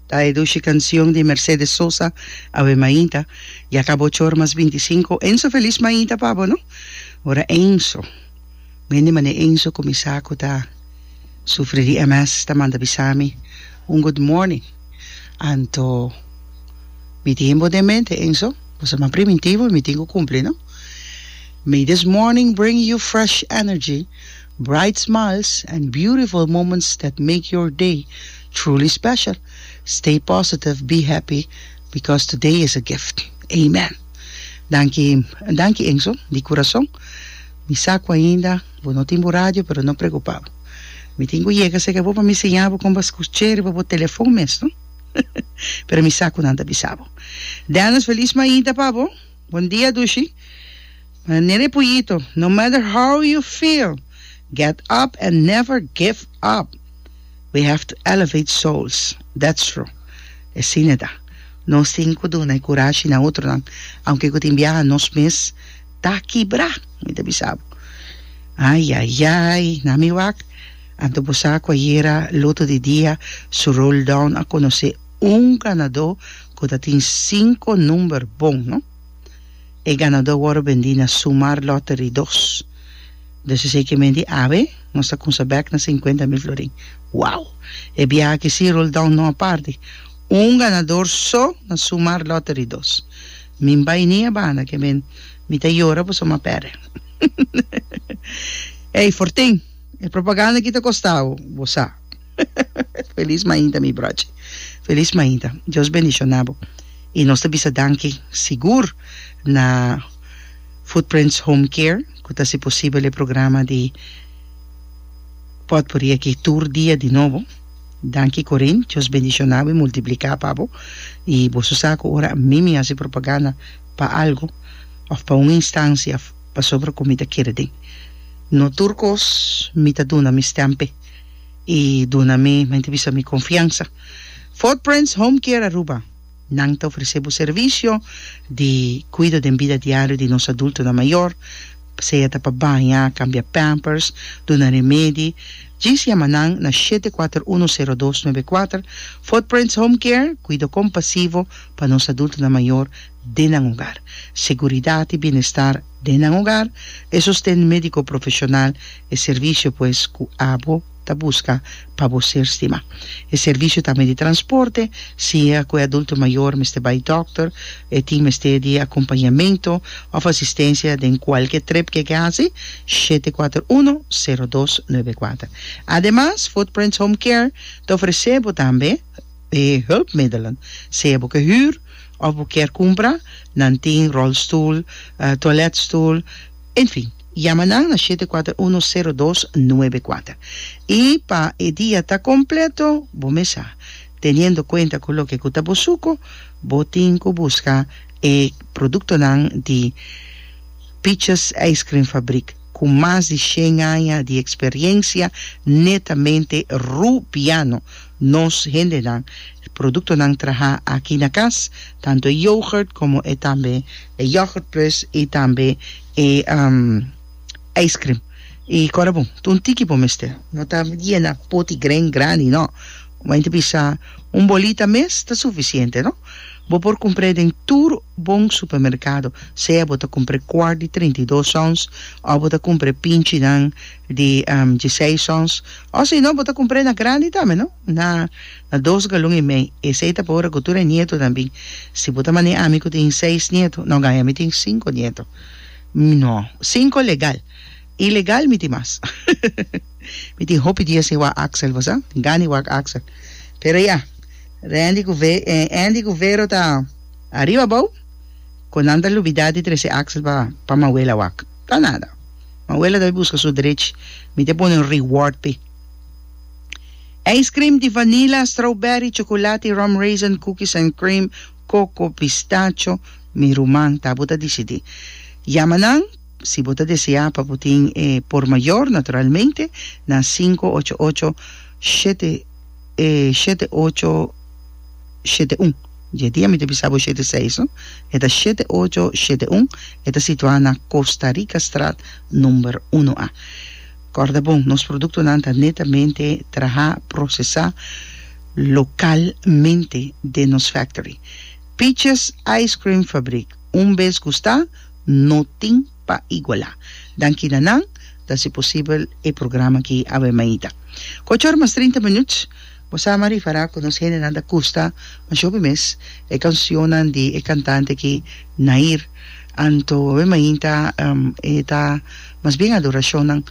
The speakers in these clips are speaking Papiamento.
Ta e dushi cancion di Mercedes Sosa, Awe Mainta, ya ca bo chor mas binti sinku, Enzo Feliz Mainta pa bo no. Ora Enzo, men di mane Enzo cu mi sa cu ta sufri di MS ta manda bisa mi un good morning, anto mi tin bo den mente Enzo, bo sa mas primitivo y mi tin cu cumpli no. May this morning bring you fresh energy. Bright smiles and beautiful moments that make your day truly special. Stay positive, be happy because today is a gift. Amen. Danki danki Enzo di kurason. Mi sa ku ainda bo no tin bo radio pero no preokupa bo. Mi tin ku yega serka bo pa mi siña bo kon pa skuch'é riba bo telefon mes no. Pero mi sa ku nan ta bisa bo. Dennis feliz mainta pa bo. Bon dia Dushi. Manere puiito, no matter how you feel, get up and never give up. We have to elevate souls, that's true. E sine ta. Nos tin cu duna e curashi na otronan, aunke cu tin biaha nos mes ta kibra. Mi ta bisa bo, Ayayay, na mi wak, anto bo sa cu ayera loto di dia su roll down a conoce un ganador cu ta tin cinco number bon, no? E ganadó wòrdu bendí na Sumar Lottery dos. Dus esei ke menti awe, nos ta kunsa bèk na sinkuenta mil florin. Wow! E biaha aki sí rol down no a parti. Un ganador so na Sumar Lottery dos. Mi bai ni a banda ke men mi ta yora pasobra mi a pèrdè. Ey, Fortin! E propaganda aki ta kosta bo, bo sa. Feliz mainta mi brochi. Feliz mainta. Dios bendiciona bo. Y nos ta bisa danki sigur na Footprints Home Care cu ta haci posibel e programa di potpourri aki tur dia di nobo. Danki Corin. Dios bendiciona bo y multiplica pa bo. Y boso sa cu ora ami mi haci propaganda pa algo of pa un instancia pasobra cu mi ta kere den. No tur cos mi ta duna mi stempe. i duna mi mente bisa mi konfiansa. Footprints Home Care Aruba, Nan ta ofresé bo servisio di kuido den bida diario di nos adultonan mayor, sea ta pa baña, kambia pampers, duna remedi. Djis yama nan na shete kuater uno sero dos nuebe kuater. Footprints Home Care, kuido kompasivo pa nos adultonan mayor den nan hogar. Seguridat i bienestar. Den nan hogar, e sosten médiko profeshonal, e servisio pues ku abo ta buska pa bo ser stima. E servisio tambe di transporte, si e ku e adulto mayor mester bai dòkter, e tin mester di akompañamentu òf asistensia den kualke trip ke ke hasi, shete kuater uno, sero dos, nuebe kuater. Ademas, Footprints Home Care ta ofresé bo tambe e hulpmiddelen, sea bo ke hür, Of bo kier cumpra, nan tin rolstoel, toiletstoel, enfin. Yama nan na shete cuater uno cero dos nuebe cuater. Y pa e dia ta completo, bo mesa. Teniendo cuenta cu loke cu ta bo suco, bo tin cu busca e productonan di Peaches Ijscream Fabriek cu mas di shen aña di experiencia netamente Rubiano. Nos hendenan e produktonan trahá aki na kas, tantu e yoghurt komo e tambe e yoghurt plus i tambe e ijskrim. I kòrda bo ta un tiki bo mester, no ta yena poti gren grandi nò, bo a yente bisa un bolita mes ta sufisiente nò. Bo por kumpr'é den tur bon supermerkado, sea bo ta kumpr'é kwart di treinta i dos ons òf bo ta kumpr'é pinchinan di djisei sons, o si no bo ta kumpr'é na grandi tambe no, na na dos galun i mei, esei ta pa ora ku tur e nieto nan bin, si bo ta man'é ami ku tin seis nieto, no gaya mi tin sinko nieto, mi no, sinko legal, i legal mi tin mas, mi tin hopi dia sin wak Axel bo sa, tin gana di wak Axel, pero ya, Rendi ku Ve eh Andy ku Vero ta ariba abou, ku nan ta lubidá di trese Axel pa pa Mawela wak. Ta nada. Manuela ta bai busca su drech. Mi ta pone un reward p'e. Ice cream di vanilla, strawberry, chocolate, rum raisin, cookies and cream, coco, pistacho, mi ruman. Ta bo ta dicidi. Yama nan, si bo ta desea pa bo tin e por mayor, naturalmente, na cinco ocho ocho shete. E shete ocho shete un. Dje dia mi ta bisa bo shete seis no. E ta shete ocho shete un, e ta situá na Costa Rica Straat number uno a. Kòrda bon, nos produktonan ta netamente trahá, prosesá, lokalmente den nos factory. Peaches Ice Cream Fabrik, un bes gustá, no tin. pa igualá. Danki na nan, ta si posibel e programa aki awe mainta. Ocho or mas trinta minuut, bo sa mari fará ku nos hendenan ta gusta mas hopi mes e kansionnan di e kantante aki Nair. Anto awe mainta e ta mas bien adorashonnan.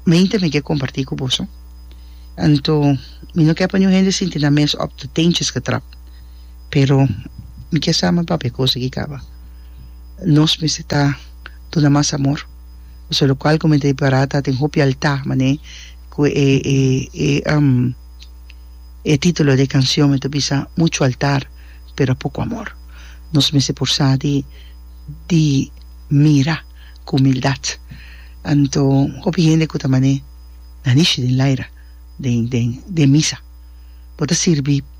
Mainta mi ke kompartí ku boso. Anto mi no ke pa niun hende sinti nan mes òf te tentjes getrapt. Pero mi kier sa mi papia cos aki caba. Nos mester ta duna mas amor. Pasobra locual cu mi ta para ta tin hopi alta manera cu e e e titulo di e cancion mi ta bisa mucho altar pero poco amor. Nos mester porsa di di mira cu humildad. Anto hopi hende cu ta manera nan ishi den laira den den den misa bo ta sirbi.